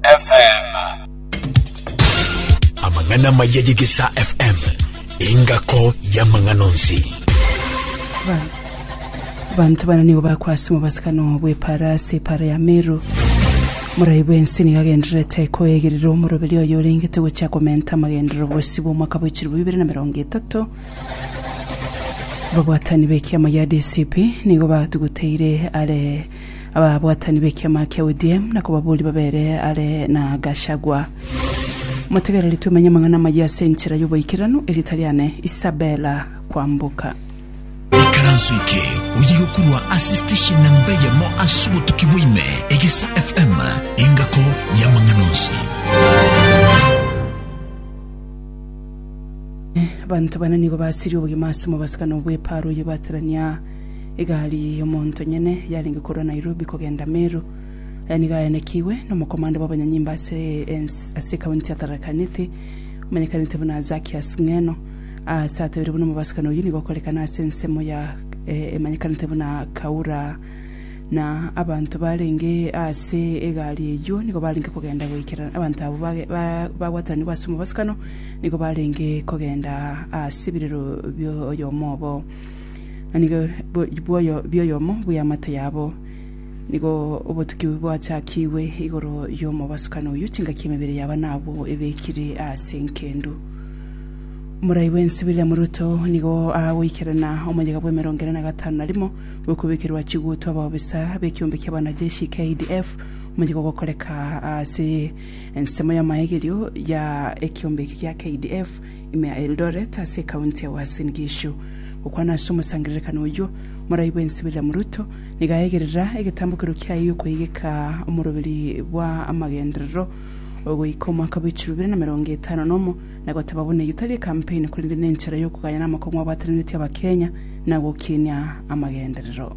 FM. Amang'ana maya y'Egesaa FM, engako y'amang'ana onsi. Banto bana nigo bakwasima obasikano bw'epaara ase epaara ya Meru. Morai bw'ense nigo agendererete koegerera omoroberi oyo orengete gochia komenta amagenderero bosio bw'omwaka bwa chilifu bibere na merongo etato. Babwatani b'ekiama ya DCP nigo batuguteire are ababwatani b'ekiama kia ODM na kobaboria babere are na Gachagua. Motegereri twemenye amang'ana amayia ase enchera y'oboikeranu, erieta riane Isabella Kwamboka. Ikaranso eke oye gokurwa ase station namba eyemo ase obotuki bwaime Egesa FM engako y'amang'ana onsi. Abanto bane nigo basirie obogima ase omobaso kana obweparo oye baterania Egari y'omonto nyene yarenge korwa Nairobi kogenda Meru, aya nigo ayanekigwe nomokomanda bw'abanyanyimba ase ense ase ekaunti ya Tharaka Nithi omanyekanete buna Zakias Ng'eno ase atebire buna omobasibani oyio nigo okorekana ase ensemo ya emanyekanete buna Kaura na abanto barenge ase egari eyio nigo barenge kogenda goikerana abanto abwo bagwatananigwe ase omobasikano nigo barenge kogenda ase ebirero bioyomo obo. na nigo bw'oyo bw'oyomo bw'eamate yabo. Nigo obotuki bwachakigwe igoro y'omobasukani oyio, chingaki emebere yabo nabwo ebekire ase enkendu. Omorai bw'ense William Ruto nigo agoikerana omoyega bw'emerongo ene na gatano na rimo bw'okobekerwa chigutu abaobisa b'ekeombe kia bwanajeshi KDF omoyega ogokoreka ase ensemo y'amaegerio ya ekeombe eke gia KDF Ime ya Eldoret ase ekaunti ya Uasin Gishu. Gokwana ase omosangererekano oyio, Morai bwensi William Ruto nigo aegerera egetambokero kiaye giokoegeka omoroberi bwa amagenderero goika omwaka bw'echiro ibere na merongo etano na omo na goteba buna eyio tari ekampeni korende nenchera yokoganya namakong'u abwataneretie abakenya na gokinia amagenderero.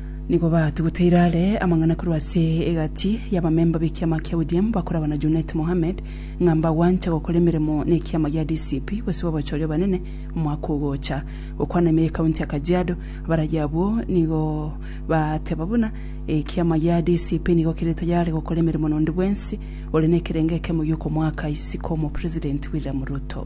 Nigo batuguteire are amang'ana korwa ase egati y'abamemba b'ekiama kia ODM bakoragwa na Junet Mohamed ng'a mbagwanche gokora emeremo n'ekiama gia DCP gose babachoria obanene omwaka ogocha. Gokwana ime y'ekaunti ya Kajiado, abaragi abwo nigo bateba buna ekiama gia DCP nigo kere tayare gokora emeremo n'onde bwensi ore nekerengo ekemo gi'okomoaka isiko omopresidenti William Ruto.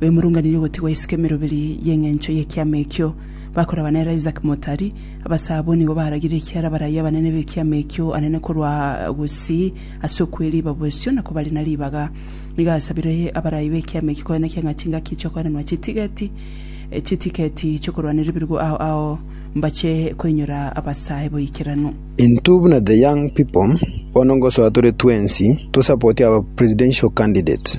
bemurunganirie ogotigwa isiko emeroberi y'engencho y'ekiama ekio, bakoraba nere Isaac Motari. Abasaa abwo nigo baragire ekiara barayi abanene b'ekiama ekio anene korwa gusii ase okweriba bosio na kobari na ribaga. Nigo asabire abarayi b'ekiama ekio koenekia ng'a chingaki chi'okoenenwa chitigeti chitiketi chi'okorwanera ebirugu ao ao mbache koinyora abasae boikeranu. Intwe buna the young people bono ngosoa tore twensi to support our presidential candidate.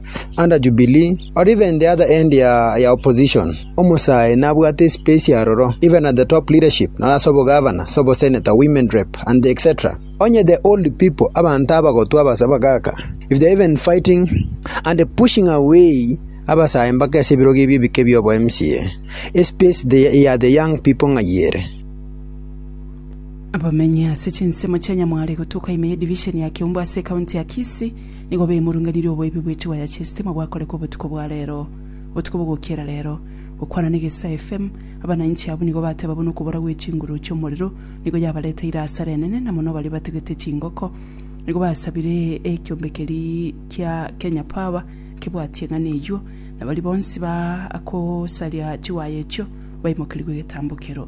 under Jubilee, or even the other end ya opposition, omosae nabwate espace aroro, even at the top leadership, naro ase obogavana, ase obosenator, women rep, and etc. Onye the old people, abanto abagotu abase abagaaka, if they are even fighting and pushing away abasae mpaka ase ebirogo ebi ebike bia obo MCA, espace ya the young people ng'ai ere? Abamenyi ase chinsemo chia Nyamware gotuka ime ye division ya Kiumbu ase ecounty ya Kisii, Nigo bemurunganirie oboibi bwe chiwaya chi'esitima gwakorekwa obotuko bwa reero, botuko bogokiera reero. Gokwana n'egesae FM, abananchi abwo nigo bateba buna okobora gwe chinguru chi'omorero nigo yabareteire asara enene na mono baria batugete chingoko nigo basabire ekiombe keri kia Kenya Power kebwatie ng'ana eyuo na baria bonsi ba akosaria chiwaya echio baimokerigwe egetambokero.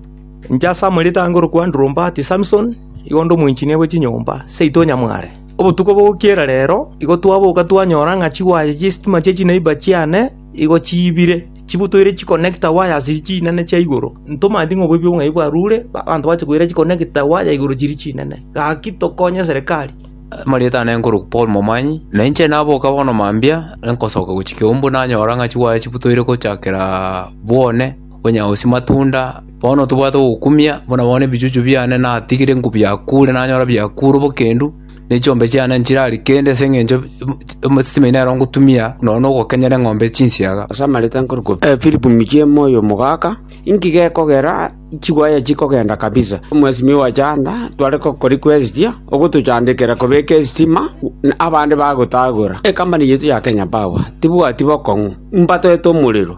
Inche ase amaretango orokwandirwa Mbati Samson, igo nde omoinchinia bwe chinyomba seito nyamware. Obotuko bogokiera reero igo twaboka twanyora ng'a chiwaya chie sitima chie chinaiba chiane igo chiibire, chibutoire chikonekta waya ase chinene chia igoro. Ntomanyeti ng'a oboibi obong'ai bwarure, abanto bache koira chikonekta waya igoro chiria chinene. Gaki tokonye serikali. Amarieta aane nkorokwa Paul Momanyi, na inche naboka bono mambia, nkosoka gochia Kiumbu nanyora ng'a chiwaya chibutoire gochakera Bwone Onye oisia matunda, bono tobwate ogokumia, buna bono ebichuchu biane natigire nkobiakure nanyora biakure obokendu, ne chiombe chiane nchirari kende ase engencho esitimaine nero ngotumia nonya na ogokenyera eng'ombe chinsiaga. Ase amareta nkorokwo Philip Michemo oyo omogaka, inki gekogera chiwaya chikogenda kabisa? Mwesimiwa wa Chanda tware gokora request ogotochandekera kobeka esitima abande bagotagora. Ecompany yaito ya Kenya Power tibwati bokong'u mbatete omorero.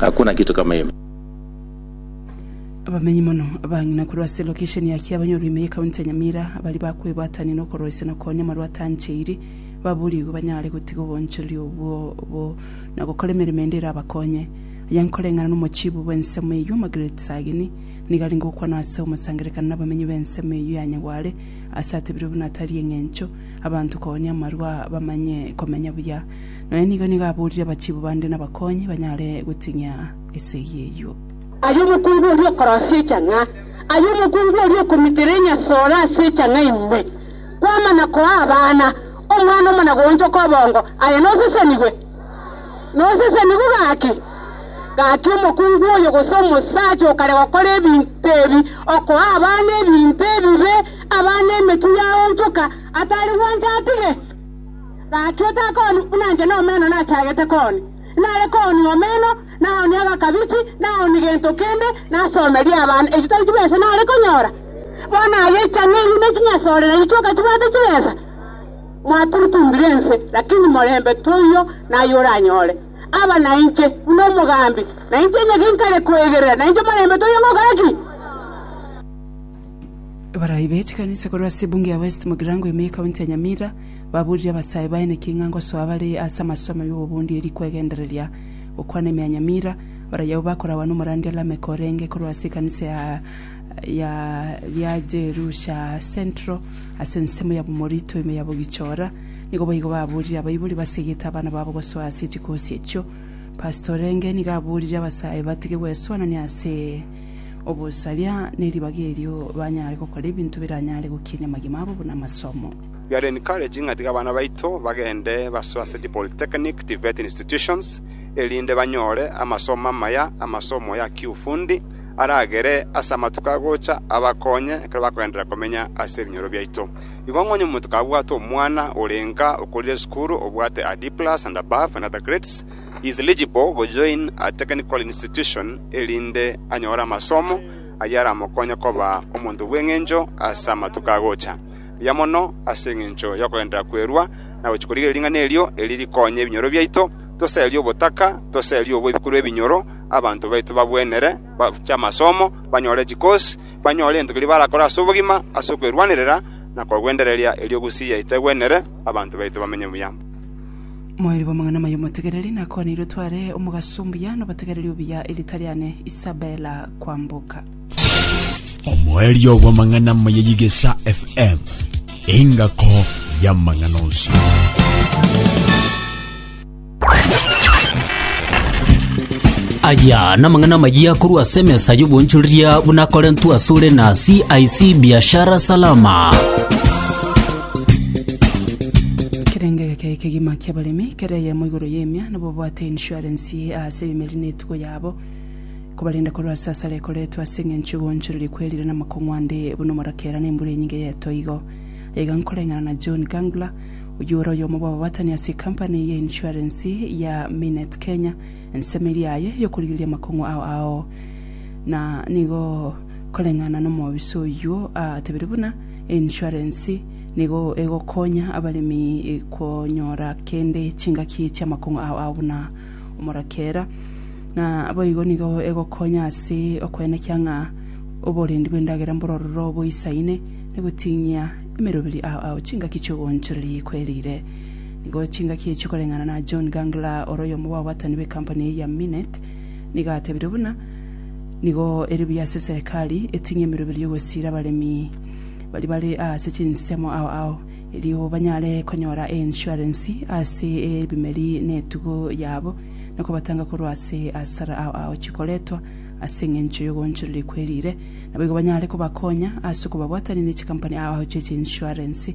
Hakuna kitu kama hiyo. Abamenyi mono abang'ina korwa ase lokesheni ya Kiabanyorwa ime y'ekaunti ya Nyamira baria bakwebwatania na okoroisia na okoonya amarwa atancheiri baboorigwe banyare gotiga obonchorori obwo bo na gokora emeremo ende erabakonye. Aya nkoreng'ana n'omochiibu bw'ensemo eyio Margaret Sagini nigo arenge gokwana ase omosangererekano n'abamenyi b'ensemo eyio ya Nyagware ase atebirio buna tari eng'encho abanto koonia amarwa bamanye komenya buya Nonya nigo nigo aborire abachibu bande nabakonyi banyare goting'ia esegi eyio. Aye omokungu oria okorosia echang'a, aye omokungu oria okomitera enyasore ase echang'a ime, kwamana koa abana omwana omo na goonchoka obongo, aye nosesenigwe? Nosesenigwe gaki? Gaki omokungu oyo gose omosacha okare gokora ebinto ebi, okoa abana ebinto ebibe, abana emetwe yaonchoka, atari gwancha atige? Gaki otakoni buna inche nomeno nachagete koni, nare koni omeno, na oni agakabichi, na oni gento kende, nasomerie abana echitari chibesa nare konyora. Bono aye chang'eiri ne chinyasorera chichoka chibwate chibesa. Mwaturutumbire ense, lakini morembe toiyo naye oranyore. Aba nainche buna omogambi, na inche onye ginkare kwegerera, nainche morembe toiyo ngokora ki? Abarai be chikanisa korwa ase ebunge ya West Mugirango ime y'ekaunti ya Nyamira baburire abasae baye naki ng'a ngosoa bare ase amasomo y'obobundi eri kwegendereria gokwana ime ya Nyamira. Abarai abwo bakoragwa n'omorandia Lameck orenge korwa ase ekanisa ya ya ya Jerusha Central ase ensemo ya Bomorito ime ya Bogichora. Nigo boigo baburire abaibori basegete abana babo gosoa ase chikosi echio. Pastor orenge nigo aburire abasae batige gwesoanania ase obosaria ne ribaga erio banyare gokora ebinto biranyare gokinia amagima abo buna amasomo. We are encouraging ng'a tiga abana baito bagende basoe ase chi polytechnic, TVET institutions, erinde banyore amasomo amaya, amasomo ya kiufundi, aragere ase amatuko agocha abakonye ekero bakogenderera komenya ase ebinyoro biaito. Igo ng'onye omonto kabwate omwana orenga okorire esukuru obwate a D+ and above and other grades, He is eligible go join a technical institution erinde anyore amasomo ayio aramokonye koba omonto bw'engencho ase amatuko agocha, mbuya mono ase engencho y'okogenderera kwerua na gochia korigereria ring'ana erio eri rikonye ebinyoro biaito, toserie obotaka, toserie obwe ebikorwa ebinyoro, abanto baito bagwenere, bache amasomo, banyore chicourse, banyore egento keria barakore ase obogima, ase okwerwanerera na kogwendereria erio gusii yaito egwenere, abanto baito bamenye buya. Moerio bw'amang'ana amaya omotegereri nakoaneirwe tware omogaso mbuya nobotegereri obuya erita riane Isabella Kwamboka. Omoerio bw'amang'ana amaya y'Igesa FM, engako y'amang'ana onsi. Aya namang'ana amaya korwa ase emesa y'obonchoreria buna akorentwe asore na CIC Biashara Salama. Ekerenge geke ekegima kiabaremi kere eyemo igoro y'emia nibo babwate insurance ase ebimeri na etugo yabo kobarenda korwa ase asara ekoretwe ase eng'encho egoonchoreria kwerire na amakong'u ande buna omorakera na embura enyinge y'etoigo. Aiga nkoreng'ana na John Gangler, oyio ore oyomo bw'ababatani ase ecompany eye insurance ya Minet Kenya, ensemo eria yaye y'okorigereria amakong'u ao ao na nigo koreng'ana na omobisa oyio atebirie buna Insurance nigo egokonya abaremi konyora kende chingaki chi'amakong'u ao ao buna omorakera, na boigo nigo egokonya ase okoenekia ng'a oborendi bw'endagera mborororo boisaine na goting'ia emeroberi ao ao chingaki chi'ogoonchoreria ekwerire. Nigo chingaki echio koreng'ana na John Gangler ore oyomo bw'abaatani b'ekampani eye ya Minet nigo atebire buna, Nigo ere buya ase eserekari eting'e emeroberi y'ogosiira abaremi baria bare aase chinsemo ao ao, erio banyare konyora einsurance ase ebimeri na etugo yabo, na kobatanga korwa ase asara ao ao chikoretwa ase engencho y'ogoonchoreria kwe riire. Naboigo banyare kobakonya ase okobabwatania ne chikampani ao ao chie chinsurance,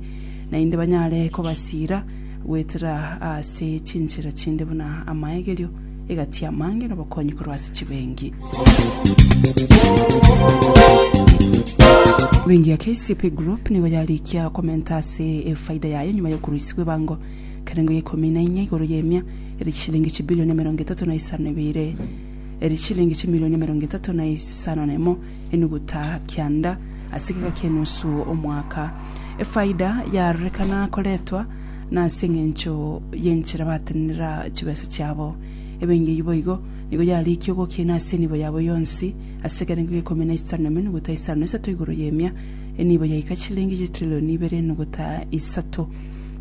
naende banyare kobasiira goetera aase chinchera chinde buna amaegerio, egati y'amaange nobokonyi korwa ase chibengi. Bengi ya KCP Group nigo yarikia komenta ase efaida yaye nyuma y'okorusigwa ebango kerengo ya ikomi na inya igoro y'emia ere chishilingi chibilioni emerongo etato na isano na ibere ere chishilingi chimilioni emerongo etato na isano na emo enuguta kianda ase egeka ki'enusu omwaka. Efaida yarorekana koretwa na ase engencho y'enchera batenenera chibesa chiabo. Ebengei boigo, nigo yarikia ogokiina ase enibo yabo yonsi, ase ekerengo g'ekomi na isano na emenuguta isano na isato igoro y'emia, enibo yaika chiliingi chitrillioni ibere enuguta isato.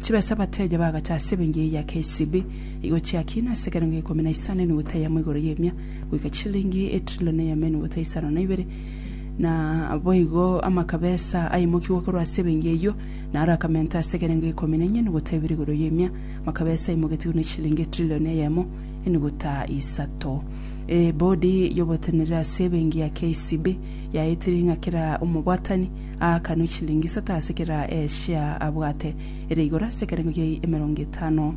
Chibesa abateja bagacha ase ebengei ya KCB igo chiakiina ase ekerengo g'ekomi na isano enuguta eyemo igoro y'emia, goika chiliingi etrillioni eyemo enuguta isano na ibere, na boigo amakabesa aimokigwe korwa ase ebengei eyio, Na arakamenta ase ekerengo ikomi na enyene gotebire igoro y'emia, makabesa aimogetigwe ne chishilingi etrilioni eyemo enuguta isato. Ebodi y'oboteneneri ase ebenki ya KCB yaetirie ng'a kera omobwatani aakanwe chishilingi isato ase kera eshea abwate, ere igoro ase ekerengo gia emerongo etano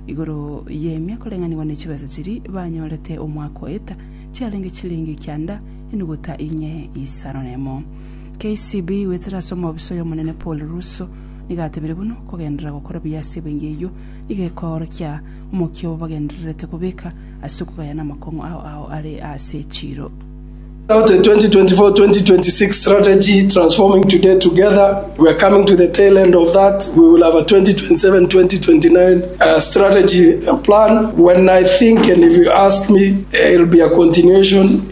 igoro y'emia koreng'anigwa ne chibesa chiria banyorete omwaka oeta, chiarenge chishilingi kianda enuguta inye isano nemo. KCB goetera ase omobisa oy'Omonene Paul Russo nigo atebire buna okogenderera gokora buya ase ebenge eyio nigo ekoorokia omokia obo bagendererete kobeka ase okogayana amakong'u ao ao are aase echiiro. About the 2024-2026 strategy, Transforming Today Together, we're coming to the tail end of that. We will have a 2027-2029 uh, strategy uh, plan. When I think, and if you ask me, uh, it'll be a continuation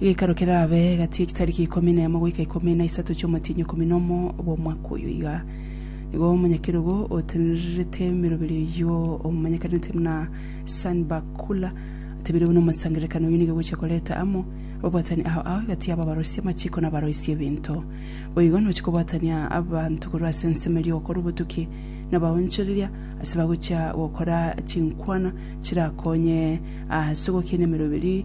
Geikaro kerabe gati y'egitariki ikomi nemo goika ikomi na isato chi'omotienyi ikomi nomo bw'omwaka oyo iga. Nigo omonyakerogo otenererete emeroberi eyio omanyekanete buna Sanbakula atebeirwe buna omosangererekani oyio nigo egochia koreta amo ababwatani ao ao egati y'abo abaroisia amachiko na abaroisia ebinto. Boigo nochia kobwatania abanto korwa ase ensemo eria ogokora obotuki na abaonchoreria ase bagochia gokora chinkwana chirakonye ase ogokina emeroberi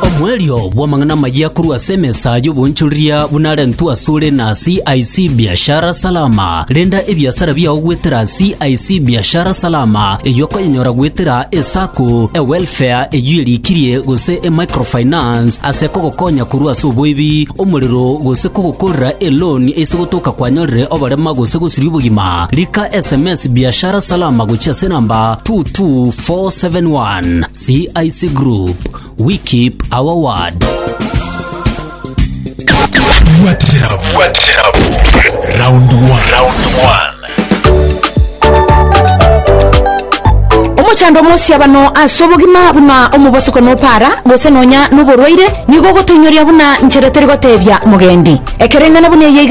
Omoerio bw'amang'ana amayia korwa ase emesa y'oboonchoreria buna arentwe asore na CIC Biashara Salama. Renda ebiasara biao goetera CIC Biashara Salama, eyio okoyenyora goetera eSacco, eWelfare eyio erikirie gose eMicrofinance ase kogokonya korwa ase oboibi, omorero gose kogokorera eloan ase gotoka kwanyorire oborema gose gosiria obogima. Rika sms Biashara Salama gochia ase enamba 22471. CIC Group. We keep our word. Round one. omochando omosiabano ase obogima buna omobosiko nopara gose nonya noborwaire nigo ogotoinyoria buna nchera teri gotebia mogendi ekereng'ana buna eye iga